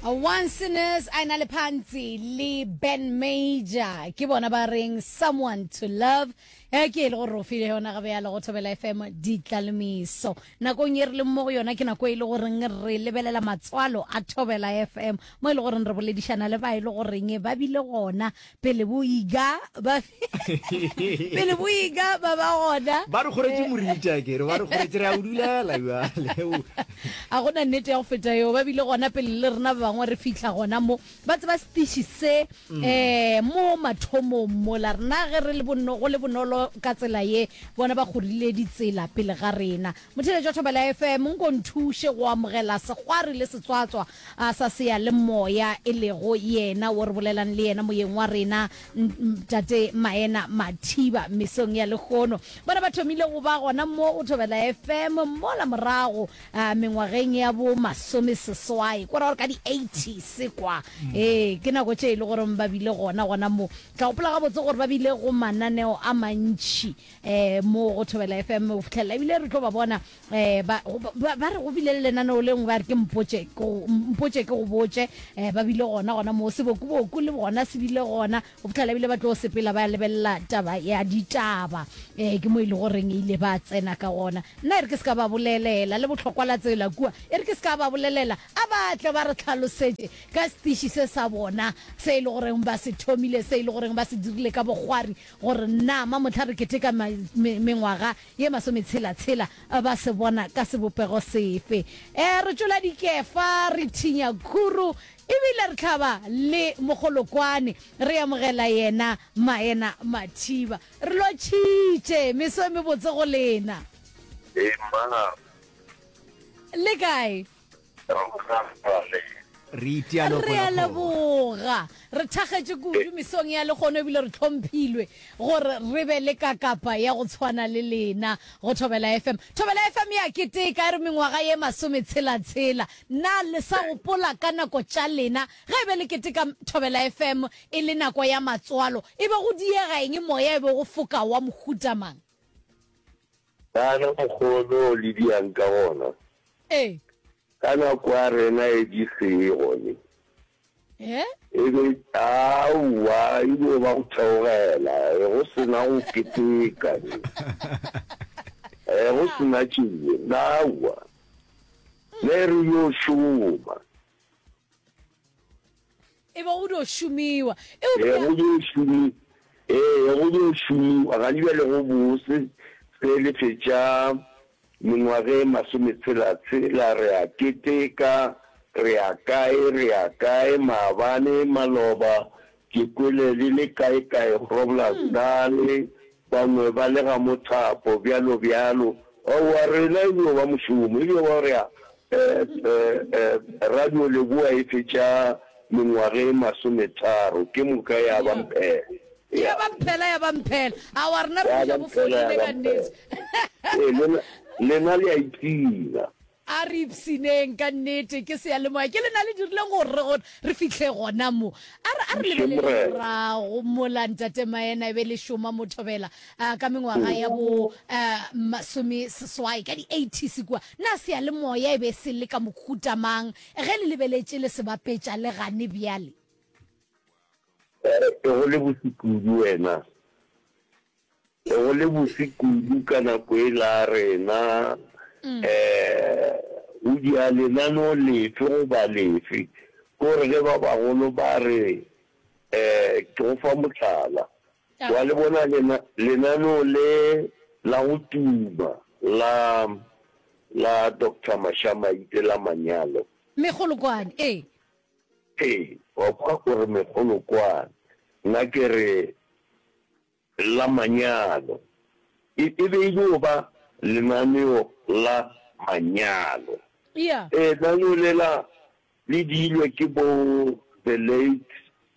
One Sinners a ena le phantsi le Ben Major ke bona ba reng someone to love e ke e le gore o file yona gabe ya le go thobela fm ditlalemeso nakong e re leng mo go yona ke nako e le goreng re lebelela matswalo a thobela fm mo e le goreng re boledišana le ba e le goreng ba bile gona pele bo iga ba pele bo iga ba ba gona ba re gore ke morita ke re ba re gore tsere a udulela ya leo a gona nnete ya go feta yo ba bile gona pele le rena ba bangwe re fihla gona mo ba tseba stishi se mm. eh mo mathomo mo la rena ge re le bonno go le bonolo ka tsela ye bona ba gorile ditsela pele ga rena motheletso thobela fm nko nthushe go amogela segwari le setswatswa A sa Seyalemoya e lego yena wo re bolelang le yena moyeng wa rena, Tate Maena Mathiba, mesong ya lehono. Bona ba thomile go ba gona mo go Thobela FM mola morago mengwageng ya bo masomeseswai, ko ra gore ka di eighties kwa. Ee, ke nako tše e le goreng ba bile gona gona mo. Ke a gopola gabotse gore ba bile go mananeo a mantši mo go Thobela FM go fihlelela ebile re tlo ba bona eh ba go- ba ba re go bile le lenaneo le nngwe ba re ke mpotše ke go- mpotše ke go botše eh ba bile gona gona moo sebokuboku le gona se bile gona go fitlhela bile ba tlo sepela ba lebelela taba ya ditaba eh ke mo e le goreng e ile ba tsena ka gona nna e re ke se ka ba bolelela le botlhokwa la tsela kua e re ke se ka ba bolelela a ba tle ba re tlhalosetše ka setiši se sa bona se e le goreng ba se thomile se e le goreng ba se dirile ka bokgwari gore nama motlha re keteka ma- me- mengwaga ye masometshela-tshela ba se bona ka sebopego sefe. Ee, re tšola dikefa, re thinya khuru, e bile re tlhaba le mogolokwane, re amogela yena Maena Mathiba. Re lotšhitše. Meso e mebotse go lena. Ee, Mma Gabo. Le kae? re itiano re a leboga re thagetše kudu mesong ya lekgono ebile re tlhomphilwe gore re be le kakapa ya go tshwana le lena go thobela fm thobela fm ya keteka e re mengwaga ye masome tshelatshela na le sa gopola ka nako tša lena ge e be le keteka thobela fm e le nako ya matswalo e be go diega eng moya e be go foka wa mohutamang Kana mokgwa o no le bjang ka gona? Ee. Ka nako ya rena e di seye gone. He? E be, aowa, e bo ba go theogela, e go sena go keteka, e go sena tšee, aowa. Ne re yo šoma. E be go dio šomiwa. E be go dio šomi, e be go dio šomiwa gane bjale go bose. Ge le fetša mengwaga e masometshela-tshela, re a keteka, re ya kae, re ya kae, maabane, maloba, ke kwele le le kae-kae, Groblersdal, Bangwe ba le ga mothapo, bjalo bjalo. Wa, wa rena e dio ba mošomo, e dio ba gore a, e, e, e, radio Leboa e fetša mengwaga e masometharo, ke moka ya ba mphela. Ya, ya ba mphela, ya ba mphela. Aowa, rena re fetša go fodile, kannete. Ee, lena, lena le a ipshina. A re ipshineng, ka nnete, ke seyalemoya. Ke lena le dirileng gore re gone, re fihle gona mo. A re, a re lebelele morago mola Ntate Maena e be e le šoma mo thobela, uh, ka mengwaga ya bo, uh, masomeseswai, ka di-eighties kua. Na seyalemoya e be se le ka mohuta mang, ge le lebeletše le se bapetša le gane bjale? A re, go le botse kudu wena. Be go le bose kudu ka nako yela a rena, um o dia lenaneo lefe goba lefe. Ko re ge ba bagolo ba re, um ke go fa mohlala, wa le bona lena, lenaneo le la go tuma la, la Doctor Mashamaite la manyalo. Megolokwane, ee. Ee, wa kwa o re megolokwane. Nna ke re, la manyalo. E, e be e dio ba lenaneo la manyalo. Eya. Ee, lenaneo lela le diilwe ke bo the late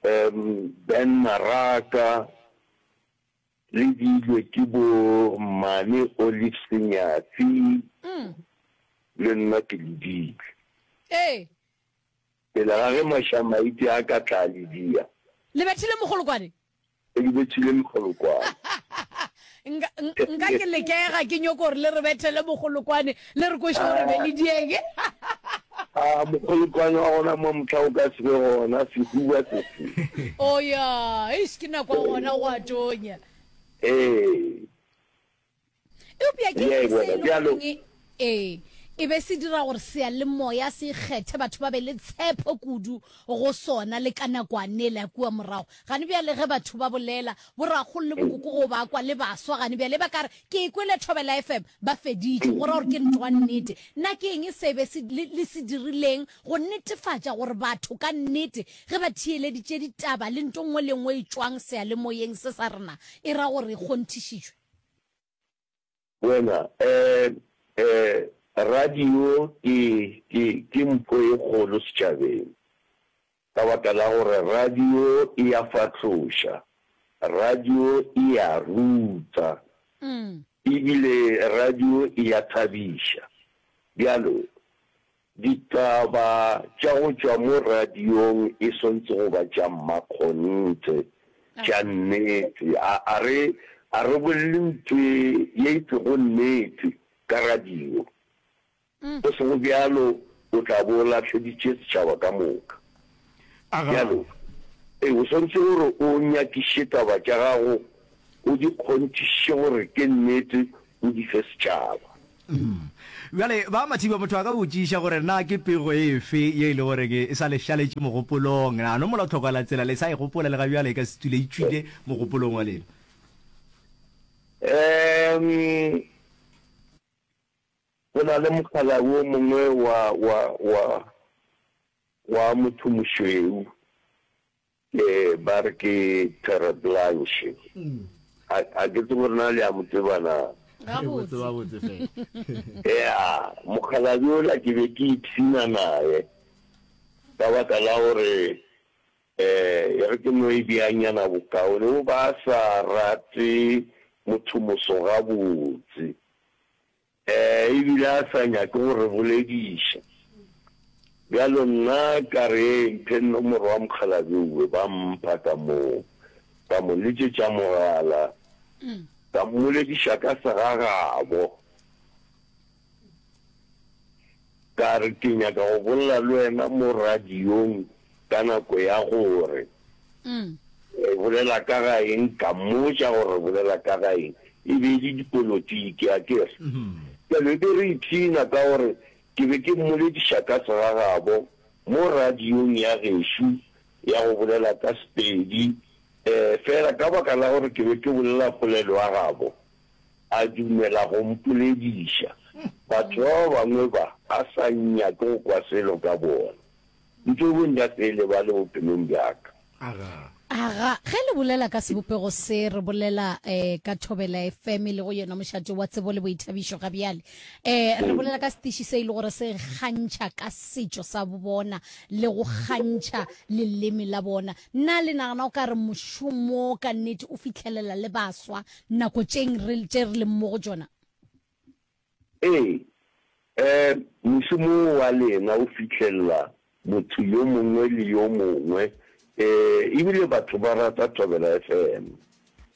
um Ben Maraka, le diilwe ke bo mmane Olive Senyatsi, le nna ke le diile. Ee. Pele ga ge Mashamaiti a ka tla a le dia. Lebethile Mogolokwane. Ge ke betšhile mogolokwane. Nka, nka ke lekega ke nyoko gore le re bethele mogolokwane, le re kweše gore be le diege. A mogolokwane wa gona mo mohla o ka se be gona, sehuba se se. Oya, eish, ke nako ya gona go a tonya. Ee. eupša ke eng se e le goreng ee e be se dira gore seyalemoya se ikgethe batho ba be le tshepo kudu go sona le ka nakwane le ya kua morago gane bjale ge batho ba bolela borakgolo le bokoko go ba kwa le baswa gane bjale ba ka re ke e kwele thobela fm ba feditše go ra gore ke ntoa nnete nna ke eng se be le se dirileng go netefatša gore batho ka nnete ge ba thiyeleditše ditaba le nto nngwe le nngwe e tšwang seyalemoyeng se sa rena e ra gore e kgonthišitšwe Wena, ee, ee, radio ke, ke, ke mpho e kgolo setšabeng, ka baka la gore radio e a fahloša, radio e a ruta, e bile radio e a thabiša. Bjalo, Ditaba tša go tšwa mo radiong e swantse go ba tša mmakgonthe, tša nnete. A, a re, a re bolele ntwe ye e sego nnete ka radio. Go sego bjalo o tla bo o lahleditše setšhaba ka moka. a gago. Bjalo, o swanetše gore o nyakiše taba tša gago, o di kgonthišiše gore ke nnete, o di fe setšhaba. Bjale, ba Mathiba, motho a ka botšiša gore na ke pego efe ye e le gore ke e sa le šaletše mogopolong? Na no mola tlhoko la tsela le sa e gopola le ga bjale, e ka se tule e tšwile mogopolong wa lena? Ee, go na le mokgalabje o mongwe wa, wa, wa. Wa motho mošweu, ke ba re ke Terre Blanche. A, a ke tsebe gore na le a mo tseba na? Gabotse. Gabotse fela. Ea, mokgalabje ola ke be ke ipshina naye, ka baka la gore, eh, e re ke no e beanyana bokaone, o ba a sa rate motho moso gabotse. Ee, e bile a sa nyake go re bolediša. Bjalo nna ka re, Mphe nomoro ya mokgalabje Uwe. Ba mpha ka moo. Ka mo letšetša mogala, ka mmolediša ka segagabo. Ka re, Ke nyaka go bolela le wena mo radiong ka nako ya gore. Re bolela ka ga eng? Ka mmotša gore re bolela ka ga eng. E be e le dipolotiki, a ke re. Bjale re be re ipshina ka gore ke be ke mmolediša ka segagabo mo radiong ya gešo ya go bolela ka Sepedi, fela ka baka la gore ke be ke bolela polelo ya gabo. a dumela go mpolediša. Batho ba ba bangwe ba ba sa nyake go kwa selo ka bona, ntšo bo ntša pele ba le bophelong bja ka. Aga. Aga, ge le bolela ka sebopego se, re bolela eh, ka Thobela FM, e lego yona mošate wa tsebo le boithabišo ga bjale. Eh, re bolela ka setiši se e le gore se kgantšha ka setšo sa bona le go kgantšha leleme la bona. Na le nagana o ka re mošomo ka nnete o fihlelela le baswa nako tšeng re, tše re leng mo go tšona. Ee, e, mošomo wo wa lena o fihlelela motho yo mongwe le yo mongwe, e, ebile batho ba rata Thobela FM.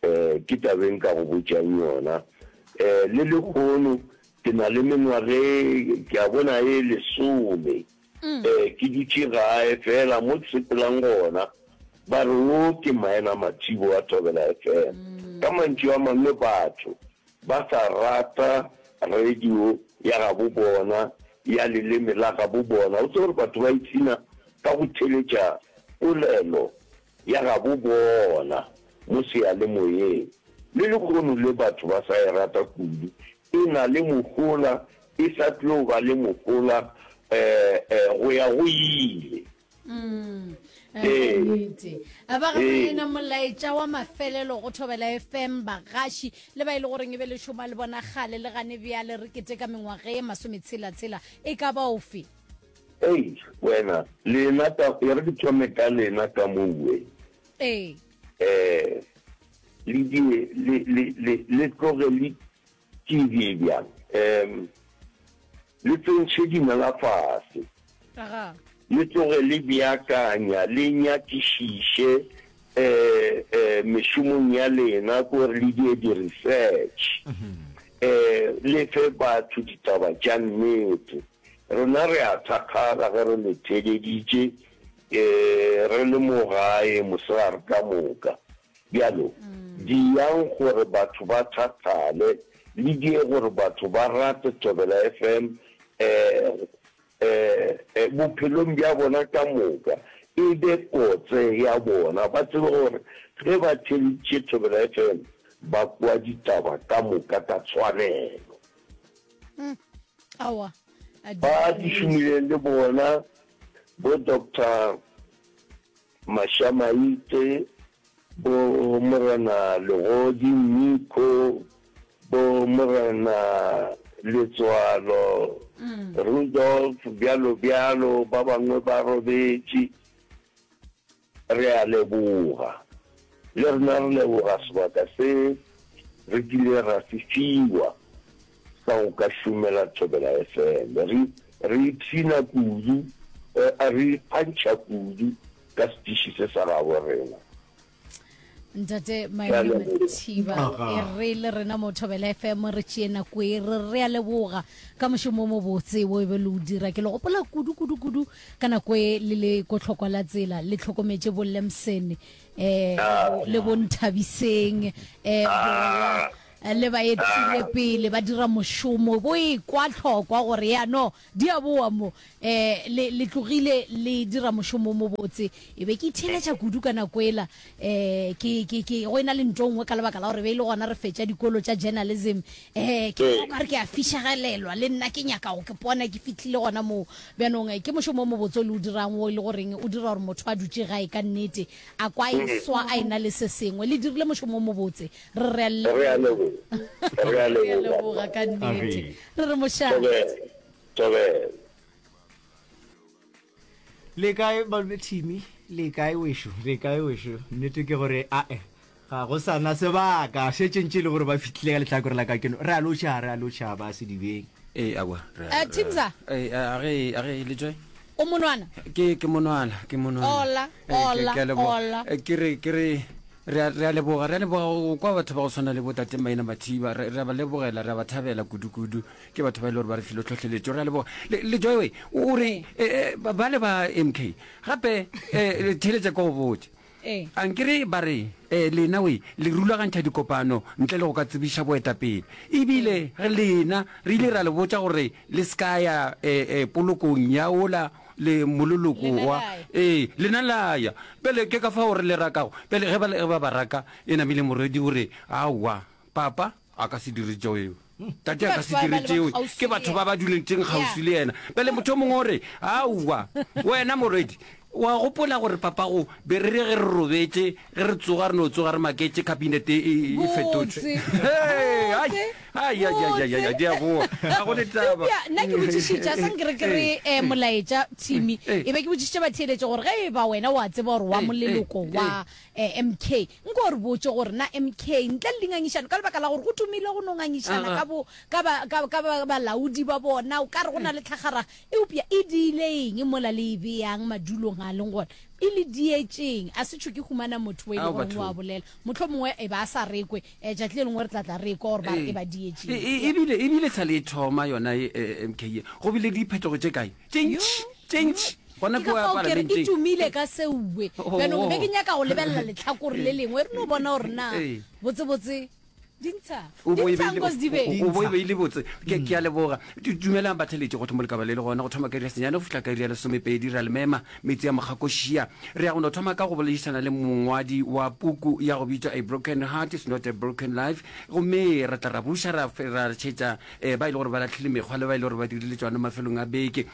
E, ke taba e nka go botšang yona. E, le lehono ke na le mengwaga e, ke a bona, e lesome. Ee, ke dutše gae feela mo ke sepelang gona. Ba re wo ke Maena Mathibo wa Thobela FM. Ka mantšu a mangwe batho ba sa rata radio ya gabo bona, ya leleme la gabo bona. O tsebe gore batho ba ipshina ka go theletša polelo ya gabo bona mo seyalemoyeng. Le lekgono le batho ba sa e rata kudu E na le mohola, e sa tlo ba le mohola go ya go ile. Nnete. A ba ga yena molaetša wa mafelelo go Thobela FM, bagaši le ba e le goreng e be le šoma le bona kgale le gane bjale re keteka mengwaga ye masometshela-tshela e ka ba ofe? Eish wena, lena ka, e re ke thome ka lena ka mo uwe. Ee. Ee. Le die, le, le, le, le tloge le tšibje bjang. Um, le tsentšhe dinala fase. Aga. Le tloge le beakanya, le nyakišiše um, um, mešomong ya lena, ke gore le die di-research. Um, le fe batho ditaba tša nnete. Rena re a thakgala ge re le theeleditše Ke re le mo gae mosegare ka moka. Bjalo, diyang gore batho ba thathale, le diye gore batho ba rate Thobela FM bophelong bja bona ka moka, e be kotse ya bona. Ba tsebe gore ge ba theeleditše Thobela FM, ba kwa ditaba ka moka ka tshwanelo. Ba di šomileng le bona Bo Doctor Mashamaitse, bo Morena Legodi Miko, bo Morena Letswalo, Rudolf, bjalo bjalo, ba bangwe ba robetše. Re a leboga. Le rena re leboga sebaka se re kile ra se fiwa sa go ka šomela Thobela FM. Re re ipshina kudu, re ikgantšha kudu ka setiši se sa gabo rena. ntate maemo mathiba e re le rena mo thobela fm re tšee nako e re re a leboga ka mošomo o mobotse wo e be le o dira ke le gopola kudu kudu kudu ka nako e le le kotlhokwa la tsela le tlhokometse bo lemson eh, ah. le bonthabiseng um eh, ah. le ba etsile pele ba dira mošomo bo e kwa tlhokwa gore yano Di a boa mo, eh, le, le tlogile le dira mošomo o mobotse. E be ke itheeletša kudu ka nako ela, eh, ke, ke, ke, go e na le nto nngwe ka lebaka la gore be e le gona re fetša dikolo tša journalism, eh, ke bona o ka re ke a fišegelelwa, le nna ke nyaka go ke pona ke fihlile gona moo. Bjanong, eh, ke mošomo o mobotse o le o dirang wo e le goreng o dira gore motho a dutše gae ka nnete, a kwa a e swa a e na le se sengwe. Le dirile mošomo o mobotse. re re a leboga ka nnete re re mošabe le kae malome thimi le kae wešo le kae wešo nnete ke gore ae ga go sana sebaka šetšentše e le gore ba fitlhile ka letlhakore la ka keno re a lotšha re a lotšha ba sedibeng ee awa eh, timza eh, eh, age age le joy O monwana? Ke, ke monwana, ke monwana. Ola, Eh, ke- ola, ke a leboga. ola. Eh, Ke re, ke re, re a- re a leboga, re a leboga go kwa batho ba go tshwana le botate maina mathiba re re a ba lebogela re a ba thabela kudu-kudu ke batho ba e le gore ba re filo tlhotlheletso re a leboga le le joy way o o re eh, eh, ba ba le ba mk gape um theletša ko go botse A nke re ba re, Ee, lena we, le rulagantšha dikopano ntle le go ka tsebiša boetapele. E bile re lena, re ile ra le botša gore le se ka ya polokong ya wola le mololoko wa. Ee, lena la ya. Bjale ke ka fao re le rakago. Bjale ge ba ba raka, e namile morwedi o re, Aowa, Papa. a ka se dire tšeo eo tate a ka se dire tšeo ke batho ba ba duletšeng kgauswi le yena pele motho o mongwe o re aowa wena morwedi wa gopola gore papago be re re ge re robetse ge re tsoga re no tsoga re maketse cabinet e, e, e fetotse nna ke botšišitša sa nkere ke re um eh, molaetša thimi eh, eh. e be ke botšišitša batheeletše gore ge e ba wena wa tseba gore wa moleloko wa mk Nko o re botše gore na MK, ntle le dingangišano, ka lebaka la gore go tumile go no ngangišana ka bo, ka ba, ka, ka ba, balaodi ba bona, o ka re go na le tlhagaraga, eupša e diile eng mola le e beyang madulong a leng gona? E le dietšeng? A se tšho ke humana motho o e le Ao, goreng o a bathong. bolela. Mohlomongwe e be a sa re ekwe, eh, tšatši le lengwe re tla tla re ekwa gore ba re Ee. e ba dietšeng. E, e, e bile, e bile sa le e thoma yona ye, eh, MK ye, go bile le diphetogo tše kae? Tše Yo, ntši, tše yo. ntši. Gona Ke ka kua fao ke re e Palamenteng. tumile ka seue. Jaanong ke be ke nyaka go lebelela letlhakore le lengwe re no bona gore na Ee. botsebotse di ntsha O di bo e ntshang beile- ko se di o- beng. o- o bo e beile botse ke ke a leboga Du- dumelang batheletši go thoma lekaba le le gona go thoma ka iri ya senyane go fihla ka iri ya lesomepedi ra le mema metse ya mokgakošia re ya go no thoma ka go boledišana le mongwadi wa puku ya go bitšwa a broken heart is not a broken life gomme re tla ra buša ra fe- ra tšhetša um ba e le gore ba latlhile mekgwa le ba e le gore ba dirile tšona mafelong a beke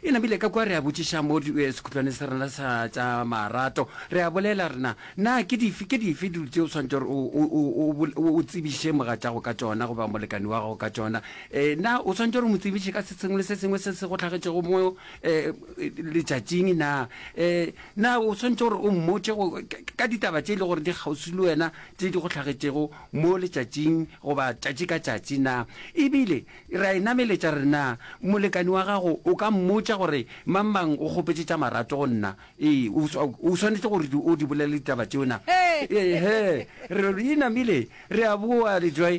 E namile ka kwa re a botšiša mo sekhutlwane sa rena sa tša marato. Re a bolela re na, Na ke dife, ke dife dilo tše o swanetše gore o, o, o, o, o, o tsebiše mogatšago ka tšona goba molekani wa gago ka tšona? E, na o swanetše gore o mo tsebiše ka se sengwe le se sengwe se se go hlagetšego mo, e, letšatšing? Na, e, na o swanetše gore o mmotše go, ka, ka ditaba tše e le gore di kgauswi le wena tše di go hlagetšego mo letšatšing goba tšatši ka tšatši? Na e bile Re a e nameletša, re re, Na molekane wa gago o ka mmotša gore, Mangmang o kgopetše tša marato go nna? Ee, o, o swanetše gore o di bolele ditaba tšeo, na? Ee-he. Re re, Inamile, re a boa, le tswa,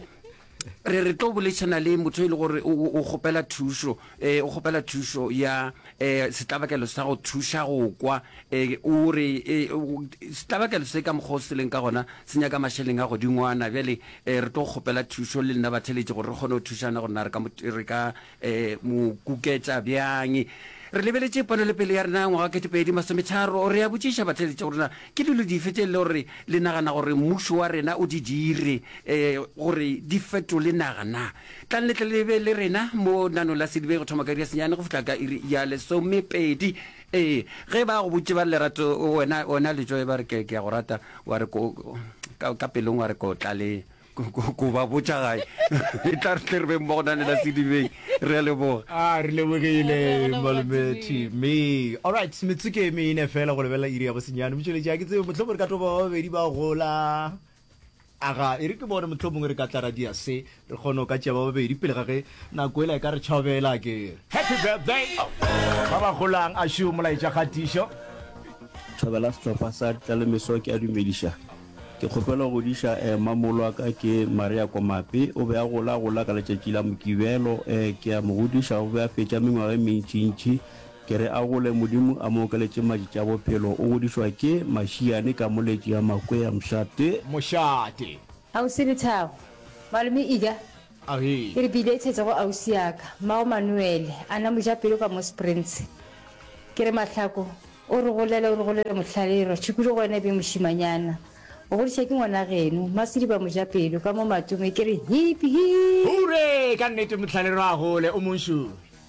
re re tlo boledišana le motho e le gore o, o kgopela thušo, e, o kgopela thušo ya, e, setlabakelo sa go thuša go kwa. E, o re, e, o, setlabakelo se ka mokgwa o se leng ka gona se nyaka mašeleng a godingwana. Bjale E, re tlo go kgopela thušo le nna batheletši gore re kgone go thušana gore na re ka mo, re ka e, mo kuketša bjang. Re lebeletše ponelepele ya rena ya ngwaga wa ketepedi masometharo. Re a botšiša batheletši gore na ke dilo dife tše e le gore le nagana gore mmušo wa rena o di dire e, gore di fetole naga na. Tlang le tle le be le rena mo Lenaneong la Sedibe go thoma ka iri ya senyane go fihla ka iri ya lesomepedi. Ee, ge ba go botše ba re lerato, wena, wena letšwa e ba re ke, ke a go rata, wa re ko, ka, ka pelong wa re ko tla le, ko, ko, ko ba botša gae. e tla re tle re be mmogo na le la sedibeng. Re a leboga. A re lebogile Malome Timmy. Alright, metsotso ke e mene fela go lebelela iri ya bosenyane. Motšweletši, ga ke tsebe, mohlomong re ka topa ba babedi ba gola. Aga, e re ke bone mohlomongwe re ka tla ra dia se, re kgone go ka tšea ba babedi pele ga ge nako ela e ka re tšhobela, akere? Happy birthday! Ba ba golang, a šo molaetša kgatišo. Thobela sehlopha sa ditlalemeso ke a dumediša. Ke kgopela go diša eh mamolo wa ka ke Maria Komape, o be a gola gola ka letšatši la Mokibelo eh ke a mo godiša o be a fetša mengwaga e mentšintši Ke re a gole Modimo a mo okeletše madi tša bophelo o godišwa ke mašiane ka mo letše ya makwea mšate. Mošate. Ausi Lethago, Malome Ida, Ahee. ke re ke iletšetša go ausi ya ka mmago Manuele a na mojapelo ka mo Springs. Ke re Mahlako o re golele o re golele mohlale e re tšhukulu go wena e be mošimanyana o godišwa ke ngwanageno Masediba mojapelo ka mo Matome ke re hip hip. Hurre ka nnete mohlale rwa gole o monšuri.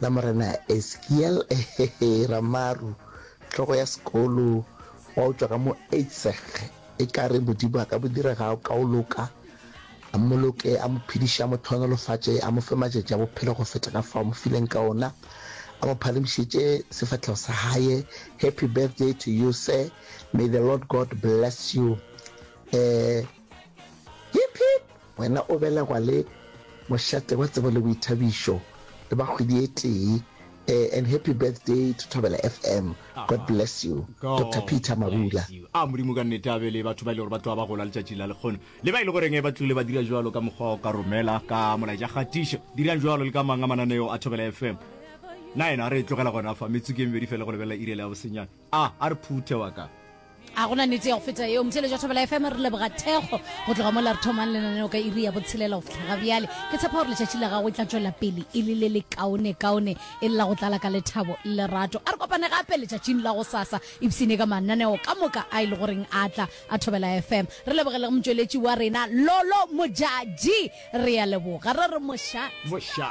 La Morena Ezekiel Ramaru, hlogo ya sekolo, wa utswa ka mo Eidseg, e ka re Modimo a ka mo dira ga o ka o loka, a mmoloke, a mo phediše, a mo thonolofatše, a mo fe matšatši a bophelo go feta ka fao mo fileng ka ona, a mo phalemišetše sefahlego sa gae. Happy birthday to you, sir. May the Lord God bless you. Eh, Yip-yip! Wena o belegwa le mošate wa tsebo le boithabišo le ba kgwedi e tee e, and happy birthday to Thobela FM. God bless you Doctor Peter Mabula. A Modimo ka nnete a be le batho ba e le gore ba tloga ba gola letšatši la lekgono, le ba e le goreng ba tlile ba dira bjalo ka mokgwa o ka romela ka molaetša kgatišo. Dirang bjalo le ka mang a mananeo a Thobela FM. Na yena re e tlogela gona fa, metsotso ke e mebedi fela go lebelela iri ya le ya bosenyane. A, a re phuthe wa ka. A go na nete ya go feta yeo? Motheeletša Thobela FM, re leboga thekgo go tloga mola re thomang lenaneo ka iri ya botshelela go fihla ga bjale. Ke tshepa gore letšatši la gago e tla tšwela pele e le le lekaonekaone e le la go tlala ka lethabo le lerato. A re kopane gape letšatšing la gosasa ipshine ka mananeo ka moka a e le goreng a tla a Thobela FM. Re leboge le go motšweletši wa rena Lolo Modjadji. Re a leboga, re re mošate.